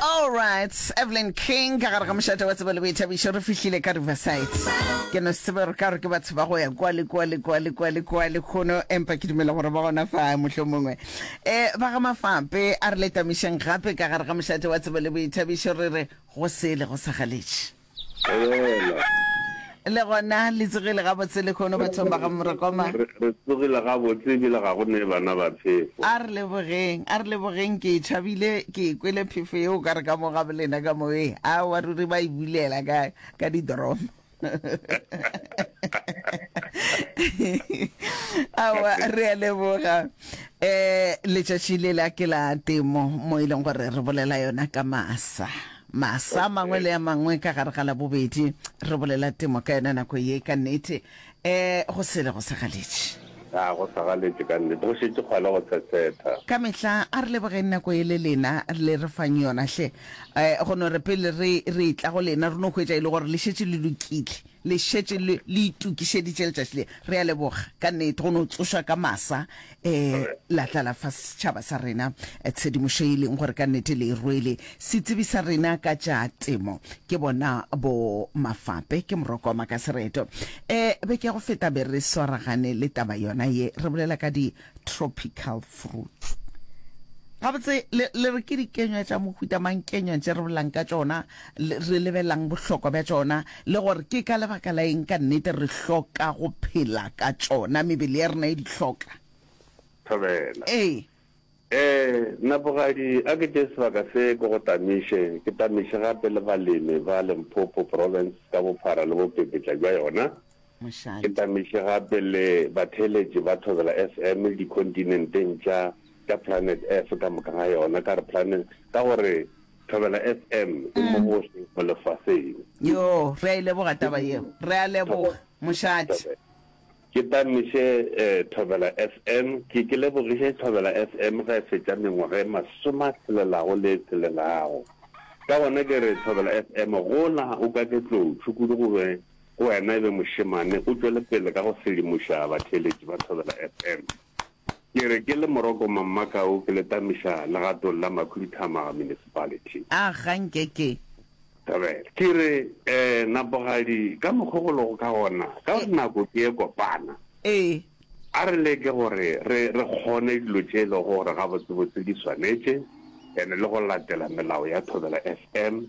Alright, Evelyn King ka gare ga mošate wa tsebo le boithabišo re fihlile ka Riverside. Ke no sebe re ka re ke batho ba go ya kwa le kwa le kwa le kwa le kwa le khono empa ke dumela gore ba gona fa mohlho mongwe. Eh ba ga mafape a re letamišeng gape ka gare ga mošate wa tsebo le boithabišo re re go sele go sa galetše. le gona le tsogile gabotse lekgono bathong ba ga morekoma re tsogile gabotse ebile ga go ne bana ba phefo a re lebogeng a re lebogeng ke thabile ke kwele phefo yeo ka re ka mo ga bolena ka moe a wa ruri ba e bulela ka ka didoromo awa re a leboga um letšatši le la ke la temo mo e leng gore re bolela yona ka masa Masa a mangwe le a mangwe ka gare ga Labobedi, re bolela temo ka yona nako ye. Ka nnete, ee, go sele go segaletše. A go segaletše ka nnete? Go šetše kgwale go tshetsetha. Ka mehla, a re lebogeng nako ye le lena le re fang yona hle. Ee, go no re pele re, re etla go lena, re no hwetša e le gore le šetše le lokile. Le šetše le, le itokišeditše letšatši le. Re a leboga, ka nnete, go no tsoša ka masa, e, la tla la fa setšhaba sa rena tshedimošo e leng gore ka nnete le e rwele. Setsebi sa rena ka tša temo ke bona bo Mafape, ke Morokoma ka sereto. E, beke ya go feta be re swaragane le taba yona ye, re bolela ka di. tropical fruits gabotse le re ke dikenywa tša mohuta mang kenywa tše re bolang ka tšona re lebelelang bohlokwa bja tšona le gore ke ka lebaka la eng ka nnete re hloka go phela ka tšona mebele ya rena e di hloka thobela ee Eh, Napogadi a ke tše sebaka se ko go tamiše, ke tamiše gape le balemi ba Limpopo Province ka bophara le bopepetla bja yona. Ke tamiše gape le batheeletši ba Thobela FM le dikhontinenteng tša tša Planet Earth ka moka ga yona, ka re Planet, ka gore Thobela FM e mo gohle mo lefaseng. Yoo, re a e leboga taba yeo. Re a leboga, mošate. Ke tamiše Thobela FM, ke, ke lebogiše Thobela FM ge e fetša mengwaga e masome a tšhelelago le e tšhelelago. Ka gona ke re Thobela FM, gola o ka ke tlotšhu kudu go be Go wena e be mošemane o tšwele pele ka go sedimoša batheeletši ba Thobela FM. Ke re ke le Moroko Mammakau ke le tamiša legatong la Makhuduthamaga Municipality. A ga nke ke. Thobela. Ke re, Eh, Napogadi, ka mokgo go lego ka gona, ka gore nako ke e kopana, Ee. a re leke gore re re kgone dilo tše e lego gore gabotsebotse di swanetše and le go latela melao ya Thobela FM.